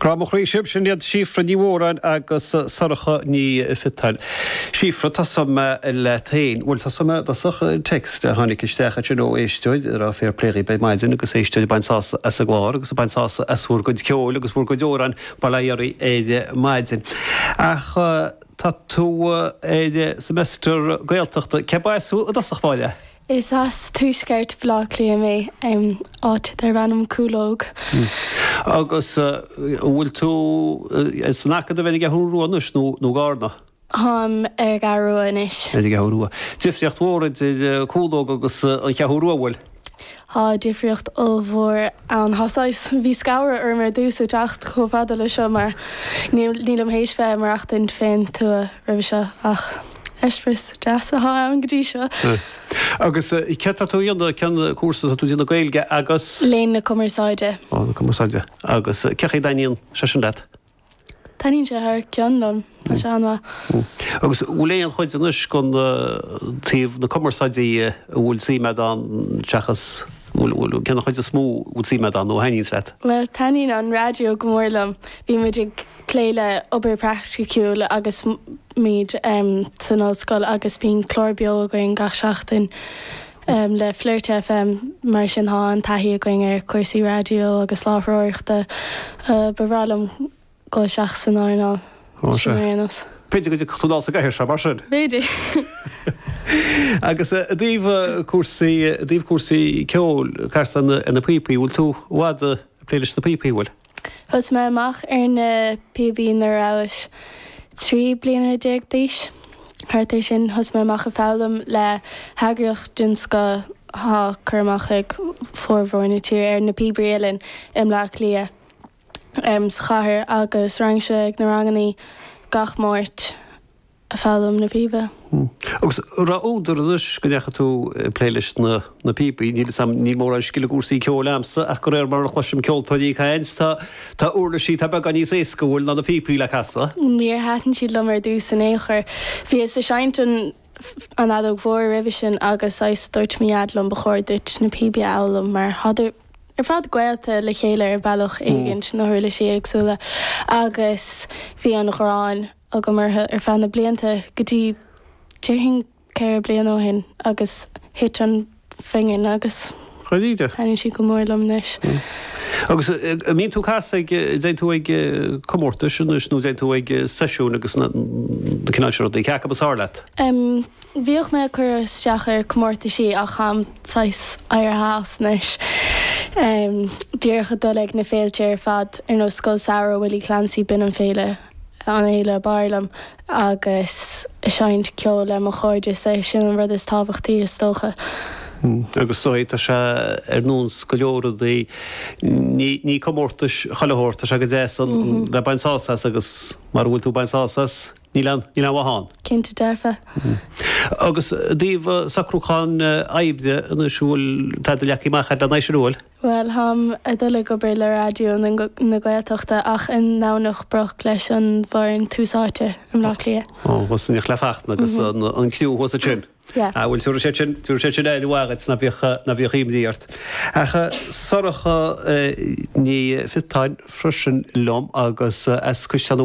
Grá mo chroí sibh, sin iad Síofra Ní Mhóráin agus Sorcha Ní Pheatáin. Síofra, tosóidh mé leat féin. Bhuel, tosóidh mé i dtosach. Text a tháinig isteach ansin ó éisteoir ag rá fair play dhaoibh ar maidin agus éisteoir ag baint sásamh as an gclár agus ag baint sásamh as bhur gcuid ceoil agus bhur gcuid amhrán bail ó Dhia oraibh ar maidin. Ach tá tú ar semester Gaeltachta. Cé ba as thú i dtosach báire? Is as tuaisceart Bhaile Átha Cliath mé, áit darb ainm Cúlóg. Agus an bhfuil tú san Acadamh ar an gCeathrú Rua anois nó i gCarna? Táim ar an gCeathrú Rua anois. Ar an gCeathrú Rua. Difríocht mhór idir Cúlóg agus an Cheathrú Rua, an bhfuil? Tá difríocht ollmhór ann. Tá saghas, bhí scanradh orm ar dtús ag teacht chomh fada leis seo mar nílim théis bheith ag maireachtaint fén tuath roimhe seo ach. Eispéireas deas atá ann go dtí seo. Agus céard atá tú a dhéanamh, cén cúrsa atá tú a dhéanamh Gaeilge agus? Léann na Cumarsáide. Ó, na Cumarsáide. Agus cén chaoi a dtaitníonn sé sin leat? Taitníonn sé thar cionn liom, tá sé an-mhaith. Agus bhfuil aon chuid anois gon taobh na Cumarsáide a bhfuil suim agat ann seachas, bhfuil, cén chuid is mó a bhfuil suim agat ann nó a thaitníonns leat? Bhuel, taitníonn an raidió go mór liom. Bhí muid ag. plé le obair praiticiúil agus muid san ollscoil agus bíonn clár beo againn gach seachtain le Flirt FM mar sin tá an-taithí againn ar chúrsaí raidió agus láithreoireachta. Ba bhreá liom dul isteach san earnáil sin ar aon nós. B'fhéidir go dtiocfadh tú dul sa gcathaoir seo mar sin? B'fhéidir. Agus i dtaobh cúrsaí, i dtaobh cúrsaí ceoil, casann tú na píopaí, bhfuil tú i bhfad ag plé leis na píopaí, bhfuil? Thosaigh mé amach ar na píobaí nuair a rabhas trí bliana déag d'aois, thart ar sin. Thosaigh mé amach ag foghlaim le heagraíocht den scoth atá cur amach ag formhór na tíre ar Na Píobairí Uilleann i mBleá Cliath sa chathair agus raghainnse ag na rangannaí gach Máirt. foghlaim na píbe. Agus raibh údar anois go ndeachaigh tú ag plé leis na píobaí. Níl a fhios agam, níl mórán scil i gcúrsaí ceoil agamsa ach de réir mar a chloisim ceoltóirí ag caint, tá tá uirlisí atá beagán níos éasca, an bhfuil, ná na píopaí le casadh. Níor thaitin siad liom ar dtús in aon chor. Bhíos ag seinnt an an fheadóg mhór roimhe sin agus saghas, dúirt mo dhaid liom ba chóir duit na píobaí a fhoghlaim mar thádar ar fad gaolta le chéile ar bhealach éigint, na huirlisí éagsúla agus bhí an ghráin. agam orthu ar feadh na blianta go dtí déarfainn ceithre bliana ó shin agus thit an phingin agus thaitníonn siad go mór liom anois. Agus an mbíonn tú cas ag, dtéann tú ag comórtais anois nó dtéann tú ag seisiúin agus na cineál sin rudaí, cé acu is fearr leat? Bhíodh mé ag cur isteach ar chomórtaisí ach táim saghas éirithe as anois, díreach ag dul ag na féilte ar fad ar nós Scoil Samhraidh Willie Clancy, b'in an fhéile, an fhéile ab fhearr liom agus seinnt ceoil le mo chairde, is é sin an rud is tábhachtaí is dócha. Agus tá sé ar nós go leor rudaí, ní comórtas chuile shórt, tá sé go deas a bheith ag baint sásamh as agus mara bhfuil tú ag baint sásamh as, níl aon mhaith ann. Cinnte dearfa. Agus i dtaobh socrúcháin oibre anois, an bhfuil, tá do leagan amach ar an aimsir, an bhfuil? Bhuel, táim ag dul ag obair le Raidió na Gaeltachta ach i nDomhnach Broc leis an bhfoireann Tús Áite i mBleá Cliath. Ó, bhuel, sin Fachtna agus an criú thuas ansin. Yeah. Ah, bhuel, tabharfaidh siad sin, tabharfaidh siad sin aire mhaith dhuit ná bíodh, ná bíodh imní ort. Ach Sorcha Ní Phiotáin, freisin liom agus as Cois Seanadh Mhagh.